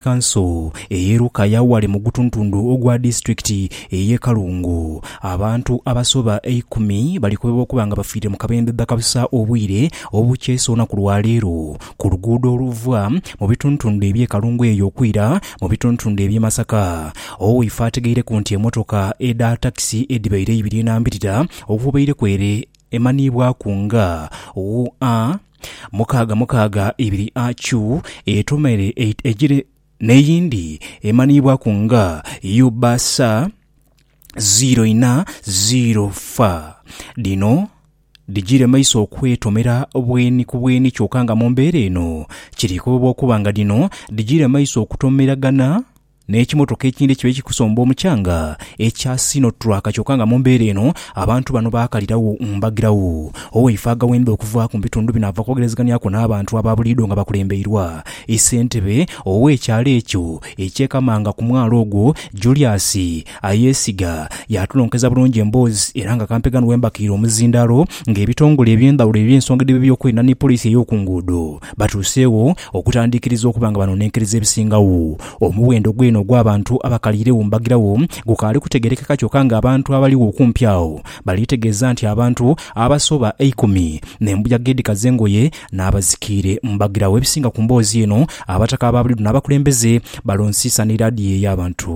Kanso ey'e Lukaya ghale mu gutuntundu ogwa disiturikiti ey'e Kalungu, abantu abasoba eikumi balikobebwa okuba nga bafiire mu kabembe bakabusa obwire obukyesa olunaku lwa leero ku luguudo oluva mu bituntundu eby'e Kalungu eyo okwira mu bituntundu eby'e Masaka. Owaife ategeireku nti emotoka edha takisi edhibaire eibiri enambirira okubaireku ere emanhiibwaku nga UA. Mukaaga mukaaga ibiri AU etomere egire n'eyindi emanhiibwaku nga UBS ziiro inha ziiro fa. Dhino dhigire maiso okwetomera bweni ku bweni kyoka nga mu mbeera eno kiri kobebwa okuba nga dhino dhigire maiso okutomeraghana. n'ekimotoka ekindhi ekiba ekikusomba omukyanga ekya Sinotruck kyoka nga mu mbeera eno abantu bano baakalirawo mbagirawo. Owaife aghaweenda okuvaaku mu bitundu bino ava kwogerezeganiaku n'abantu aba buliidho nga bakulembeirwa ssentebe ow'ekyalo ekyo eky'e Kamanga ku mwalo ogwo Julius Ayesiga yaatulonkeza bulungi emboozi era nga kampega ni wembakiire omuzindaalo ng'ebitongole eby'endhawulo eby'ensonga edh'ebyokwerinda ni poliisi ey'okunguudo batuuseegho Okutandiikiriza okuba nga banonenkeriza ebisingagho, omuwendo gweene ogw'abantu abakaliiregho mu mbagiragho gukaali kutegeerekeka kyokka ng'abantu abaligho okumpi agho baliitegeeza nti abantu abasoba eikumi n'embuyaga edhikaza engoye n'abazikiire mu mbagiragho. Ebisinga ku mboozi eno abataka abaabuliidho n'abakulembeze balonsiisa n'eradiyoo ey'abantu.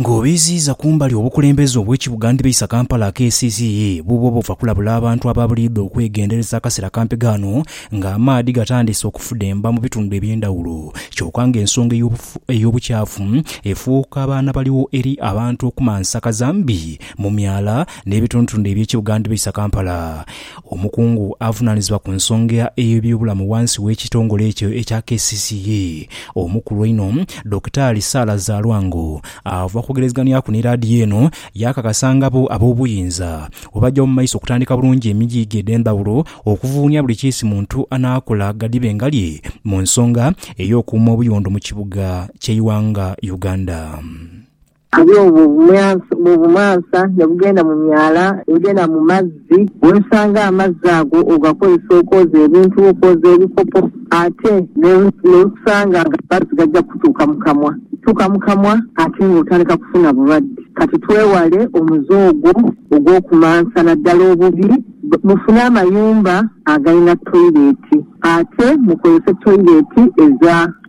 Nga obiiziiza kumbali obukulembeze obw'ekibuga ndhibeisa Kampala akeesiisiiyi buubo obuva kulabula abantu aba buliidho okwegendereza akasera kampi ghano nga amaadhi gatandiise okufudemba mu bitundu eby'endhawulo kyoka nga ensonga ey'obukyafu efuuka baanabaligho eri abantu okumansa kazambi mu myala n'ebitundutundu eby'ekibuga Ndibaisa Kampala. Omukungu avunaanizibwa ku nsonga ey'ebyobulamu ghansi w'ekitongole ekyo ekya kcca omukulu einho, Dokitaali Sarah Zalwango ava kwogerezeghanyaku ni laadiyo eno yaakakasa nga bo ab'obuyinza bwebagya mu maiso okutandika bulungi emigiiga edh'endhawulo okuvuunia buli kiisi muntu anaakola ghadhibe ngalye mu nsonga ey'okuuma obuyondo mu kibuga ky'eighanga Uganda. Aye obwo bw'obumansa ne bugenda mu myala egenda mu mazzi, weesanga amazzi ago ogakozesa okwoza ebintu, okwoza ebikopo, ate n'okusanga nga amazzi gaja kukutuuka mu kamwa. Gatuuka mu kamwa ate ng'otandika kufuna bulwadde. Kati twewale omuze ogwo ogw'okumansa naddala obubi. Mufune amayumba agalina toileeti ate mukozese toileeti eza.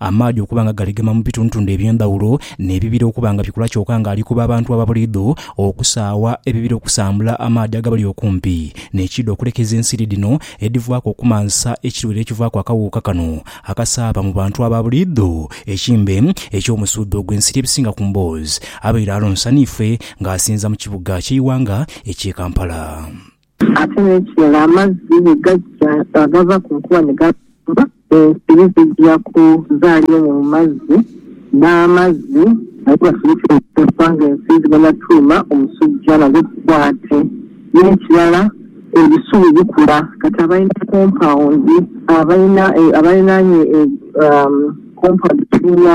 amaadhi okuba nga galegema mu bitundutundu eby'endhaghulo, n'ebibira okuba nga bikula kyoka nga alikuba abantu aba buliidho okusaagha ebibira okusambula amaadhi agabali okumpi n'ekiidho okulekeza ensiri dhino edhivaaku okumansa ekirwaire ekivaaku akawuuka kano akasaaba mu bantu aba buliidho ekimbe eky'omusuudho ogw'ensiri ebisinga ku mboozi abaire alonsaniifwe nga asinza mu kibuga ky'eighanga eky'e Kampala. Ate n'ekirala, amazzi bwe gaja nga gava ku nkuba ni gabumba, ensiri dhija kuzaalira omwo mu mazzi, n'amazzi nago gasobozese okuteebwa ng'ensiri dhigenda tuuma omusujja nago gukwate. N'ekirala, ebisubi bikula. Kati abalina kompawundi, abalinaanye kompawundi etuula.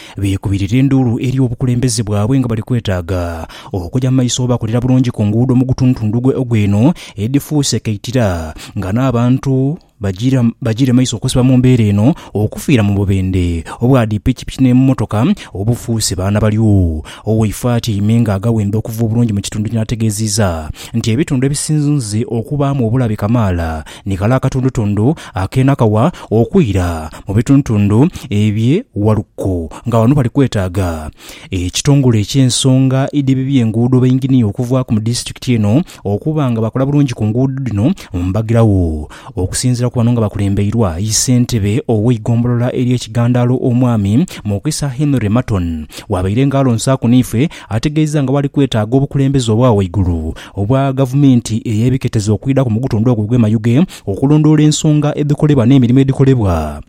beekubirira enduulu eri obukulembeze bwabwe nga bali kwetaaga okuja mu maiso obakolera bulungi ku nguudo mu gutundutundu gwe ogw'eno edhifuuse kaitira nga n'abantu bajiira bajiire maiso okusiba mu mbeera eno okufiira mu bubendhe obwa dhi pikipiki n'emmotoka obufuuse baana balyo. Owaife atyaime nga agaghenda okuva obulungi mu kitundu kino ategeeziiza nti ebitundu ebisinze okubaamu obulabe kamaala Ni kale akatundutundu akeena kawa okwira mu bitundutundu ebye Waluko nga wano bali kwetaaga ekitongole eky'ensonga edh'ebibi enguudo bainginiya okuvaaku mu disitulikiti eno okuba nga bakola bulungi ku nguudo dhino mbagiragho. Okusinziira ku bano nga bakulembeirwa yi ssentebe ow'eigombolola erye Kigandaalo omwami Mukisa Henry Maton wabaire nga alonsaaku n'ife ategeeza nga bwali kwetaaga obukulembeze obwa waigulu obwa gavumenti ey'ebiketezo okwidhaku mu gutundu ogwo ogw'e Mayuge okulondoola ensonga edhikolebwa n'emirimo edhikolebwa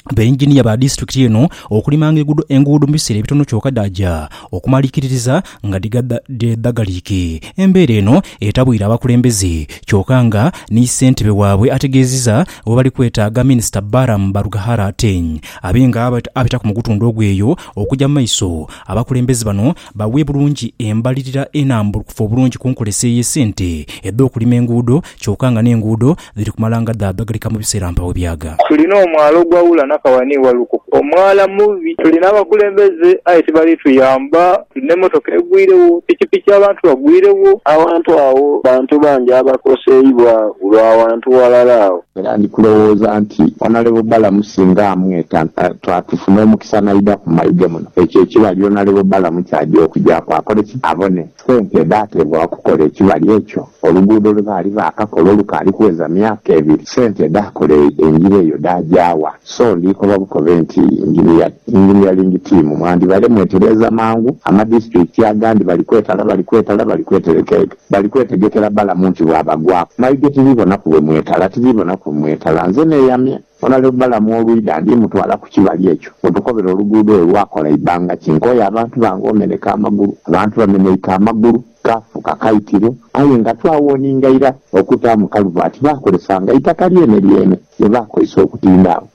bainginiya ba disitulikiti eno okulimanga enguudo mu biseera ebitono kyoka dhaaja okumalikiririza nga dhedhagaliike. Embeera eno etabwire abakulembeze kyoka nga ni ssentebe waabwe ategeezizza webali kwetaaga minisita Balaam Barugahara Ateng abe nga abitaku mu gutundu ogwo eyo okugya mu maiso abakulembeze bano Bawe bulungi embalirira enambulukufu obulungi ku nkolesa ey'esente edh'okulima enguudo kyoka nga n'enguudo dhiri kumala nga dhaadhagalika mu biseera mpaawo ebyaga. Tulina omwala ogwawula Nakawa ni Waluko. Omwala mubi. Tulina abakulembeze aye tibali tuyamba. Tulina emotoka egwirewo, pikipiki abantu bagwirewo. Awantu awo bantu bangi abakoseibwa lwa wantu walala agho. Era ndi kulowooza nti Honourable Balamu singa amweta twatufuna omukisa naidha ku mayiga muno. Ekyo ekiba lyona Rehobalamu ky'aja okugyaku akole ki? Abone sente edhaateebwa okukola ekibali ekyo. Oluguudo lwe baali baakakola olukaali kuweza myaka ebiri, sente edhaakola engira eyo dhaagya wa? So ndiikoba bukobe nti, Engineer, Engineering Team, mwandibale mwetereeza mangu, amadisiturikiti agandi bali kwetala, bali kwetala, bali kweterekeeka, bali kwetegekera Balamu nti bw'abagwaku. Maidho tiriibonaku bwe mwetala, tiriibonaku bwe mwetala. Nze neeyamye. Onalevu Balamu olwidha, ndimutwala ku kibali ekyo we tukobera oluguudo lwe lwakola eibanga ki. Nkooye abantu bange omeneka amagulu. Abantu bameneike amagulu, kaafuuka kaitiro. Aye nga twawoninga ira okutaamu kaluvati, baakolesanga eitaka lyene lyene lye baakozesa okutinda agho.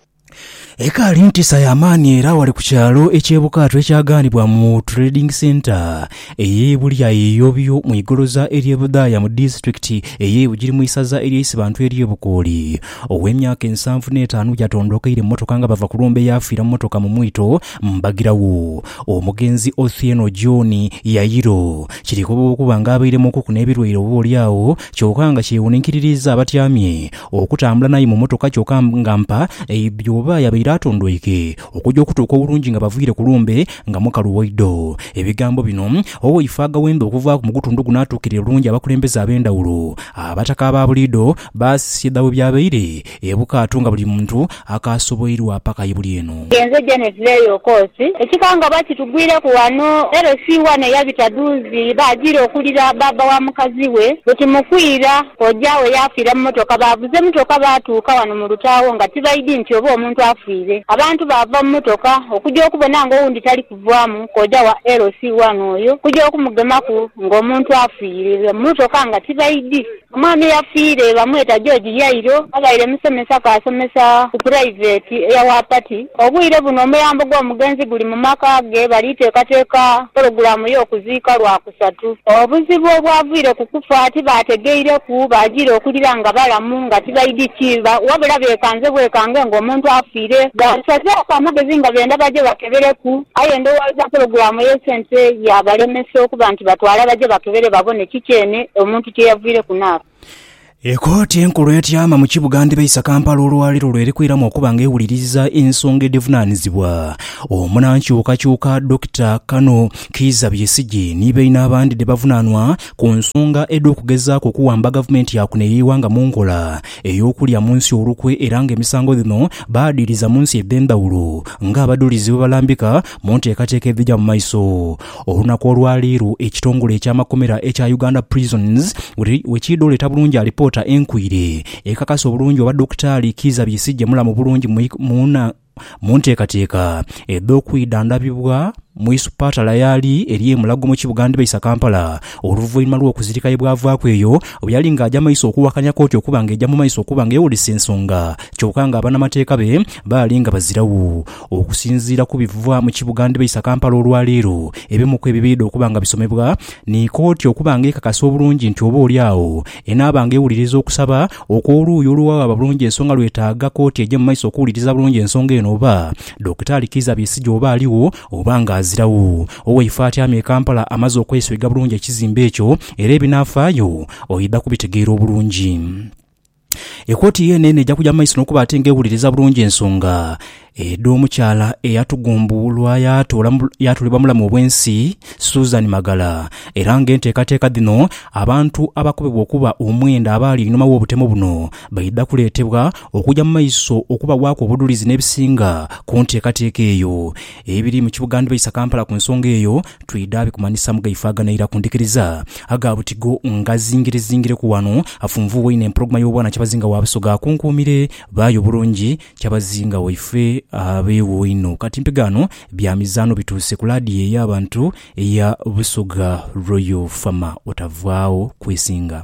Ekaali ntisa ya maani era wali ku kyalo eky'e Bukaatu ekyagaanibwa mu Trading Centre Eyeibuli lya Yeyobyo mu igoloza ery'e Budhaaya mu disiturikiti ey'e Bugiri mu isaza ery'e Isibantu ery'e Bukooli. Ow'emyaka ensanvu n'etaanu yatondokeire mu mmotoka nga bava kulumbe yaafiira mu mmotoka mu mwito mbagirawo. Omugenzi Othieno John Yayiro kirikoba okuba nga abairemuukuku n'ebirwaire oba oli agho kyoka nga kyewuninkiririiza abatyamye okutambula naye mu mmotoka kyoka nga mpa eidhi oba yabaire atondoike Okuja okutuuka obulungi nga baviire ku lumbe nga mukalu waidho. Ebigambo bino, Owo ife agaghembe okuvaaku mu gutundu guno atuukirire bulungi abakulembeze ab'endhawulo. Abataka aba buliidho baasisiye dha bwebyabaire e Bukaatu nga buli muntu akaasoboirwa paka ye buli eno. Nze Janet Leeyo Okoosi. Ekikangabwa kitugwireku ghano. LC wano eyabita dhuuzi baajiira okuwulira bbaabba wa mukazi we bwe kimukwira. Kojaawe yaafiira mu motoka. Baavuze motoka baatuuka wano mu lutaagho nga tibaidhi nti oba omuntu Twiire. Abantu baava mu motoka okuja okubona nga owundi tali kuvaamu kooja wa LC one oyo kuja okumugemaku nga omuntu afiire mu motoka nga tibaidhi. Omwami eyafiire bamweta George Yairo abaire musomesa kaasomesa ku puraiveti eya Wapati. Obwire buno omuyambo gw'omugenzi guli mu maka ge bali teekateeka pologulamu y'okuziika lwa. Isatu. Obuzibu obwavaire ku kufa tibaategeireku, baajiire okughulira nga balamu, nga tibaidhi kiiba, wabula beekanze bwekange ng'omuntu afiire. Baasazaaku amagezi nga benda baje bakebereku, aye ndowooza pulogulaamu ey'esente yaabalemesa okuba nti batwala baje bakebere babone kiki eno omuntu kye yavaire ku n'afa. Ekooti enkulu etyama mu kibuga ndhibaisa Kampala olwaleero lwerikwiramu okuba nga ewuliriza ensonga edhivunanizibwa omunankyukakyuka Dokita Kano Kiiza Besigye ni baine abandi dhebavunanwa ku nsonga edhokugezaaku okuwamba gavumenti yakuno eyeighanga mu nkola eyokulya munsi olukwe era nga emisango dhino baadhiriza munsi edhendhawulo nga abadulizi bwebalambika munteekateeka edhija mu maiso Olunaku olwaleero ekitongole eky'amakomera ekya Uganda Prisons wekiidha oleeta bulungi alipoota enkwiire ekakasa obulungi oba Dokitaali Kiiza Besigye mulamu bulungi mu nteekateeka edh'okwidha ndabibwa mu isupatala yaali eri e Mulago mu kibuga ndibaisa Kampala oluvainhuma lw'okuzirika yebwavaaku eyo bweyali nga aja maiso okuwakanya kooti okuba nga eja mu maiso okuba nga ewulisa ensonga kyoka nga abanamateeka be baali nga bazirawo Okusinziira ku biva mu kibuga ndhibaisa Kampala olwa leero, ebimu ku ebibaidha okuba nga bisomebwa ni kooti okuba nga ekakasa obulungi nti oba oli agho enaaba nga ewuliriza okusaba okw'oluuyi oluwawaaba bulungi ensonga lwetaaga kooti eje mu maiso okuwuliriza bulungi ensonga eno oba Dokitaali Kiiza Besigye oba aligho oba nga aziragho. Owaife atyamye e Kampala amaze okwesweiga bulungi ekizimbe ekyo era ebinaafaayo oidha kubitegeera obulungi. Ekooti yeene n'eja kuja mu maiso n'okuba ate ng'ewuliriza bulungi ensonga edh'omukyala eyatugumbuulwa yaatuulibwa mulamu obw'ensi, Susan Magala, era ng'enteekateeka dhino abantu abakobebwa okuba omwenda abaali einhuma w'obutemo buno baidha kuleetebwa okuja mu maiso okubawaaku obudhulizi n'ebisinga ku nteekateeka eyo. Ebiri mu kibuga ndhibaisa Kampala ku nsonga eyo, twidha bikumanhisa mu gaifaaganaira ku ndhikiriza. Aga buti go ngazingirezingireku wano, afunvuuwa inho empologoma y'obwana Kyabazinga wa Busoga akunkuumire baayo bulungi. Kyabazinga waife abeewo inho. Kati mpigaano bya mizaano bituuse ku laadiyo ey'abantu eya Busoga Royal Fama, otavaagho kwesinga.